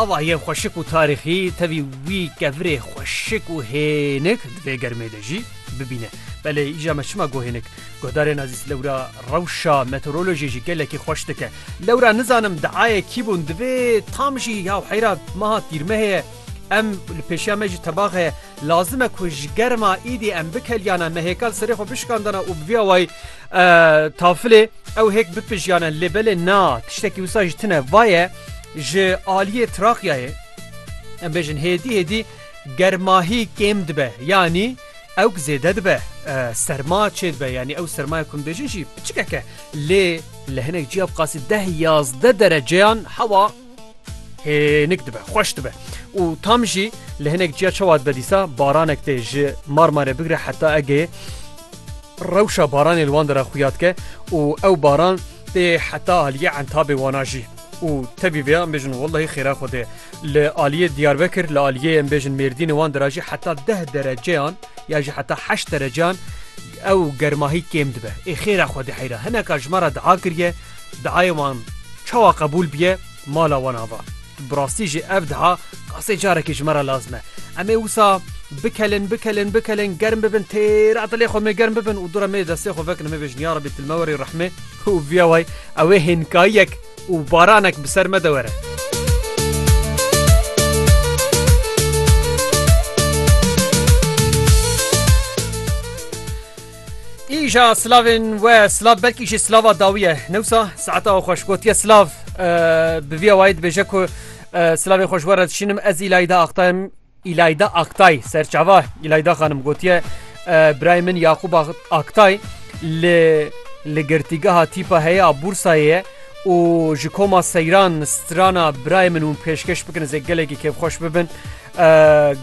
Ava yên xweşik û tarîxî tevî wî kevirê xweşik û hênik di vê germê de jî bibîne. Belê îja me çima got hênik? Guhdarên ezîz lewra rewşa meteorolojiyê jî gelekî xweş dike. Lewra nizanim diayê kî bûn divê tam jî ya heyra meha tîrmehê ye em li pêşiya me jî tebax heye. Lazim e ku ji germa îdî em bikeliyane me hêkal serê xwe bişikandana û bi vî awayî tafilê Ew hêk bipijyane lê belê na, tiştekî wisa ji tine va ye, ji aliyê Trakyayê em bêjin hêdî hêdî germahî kêm dibe yanî ewk zêde dibe, serma çê dibe yanî ew sermaya ku em bêjin jî piçikek e lê li hinek cîya bi qasî deh yazdeh dereceyan hewa Hênik dibe, xweş dibe. Û tam jî li hinek ciya çawa dibe dîsa baranek tê ji Marmare bigire heta Egeyê rewşa baranê li wan de re xuya dike û ew baran tê heta aliyê entabê wana jî. û tevî vê em bêjin wellahî xêra xwe dê. Li aliyê Diyarbekir li aliyê em bêjin Mêrdînê wan de re jî heta deh dereceyan ya jî heta heşt dereceyan ew germahî kêm dibe. Ê xêra xwe dê heyra hineka ji me re diha kiriye Dihayê wan çawa qebûl bûye mala wan ava. Bi rastî jî ev diha qasê carekê ji me re lazim e. Em ê wisa bikelin, bikelin, bikelin, germ bibin, têra dilê xwe mê germ bibin û dûre mê destê xwe vekin û mê bêjin yarabî tu li me were û rehmê û vîya way ew ê hênkayiyek û baranek bi ser me de were. Îja silavên we silav belkî jî silava dawî ye. Newsa saeta we xweş gotiye silav bi vîya wayî dibêje ku silavê xwe ji we re dişînim ez îlayî de axtayim îlayî de aktay serçava îlayî de xanim gotiye birayê min Yaqûb Aktay li li girtîgeha tîpa heye a Bûrsayê ye û ji koma seyran strana birayê min hûn pêşkeş bikin ez ê gelekî kêfxweş bibin.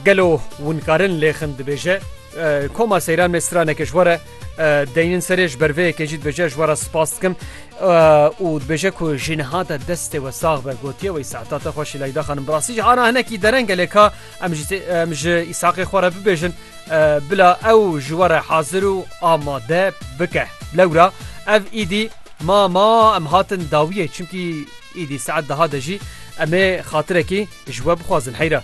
Gelo winkarin lê xin dibêje. Koma seyran me straneke ji we re deynin serê ji ber vê yekê jî dibêje ji we re spas dikim û dibêje ku ji niha de destê we sax be gotiye wê saeta te xweşî Leyda xanim bi rastî jî ana hinekî dereng e lê ka em ji em ji îsaqê xwe re bibêjin bila ew ji we re hazir û amade bike lewra ev îdî ma ma em hatin dawiyê çimkî Îdî saet deha de jî em ê xatirekî ji we bixwazin heyra.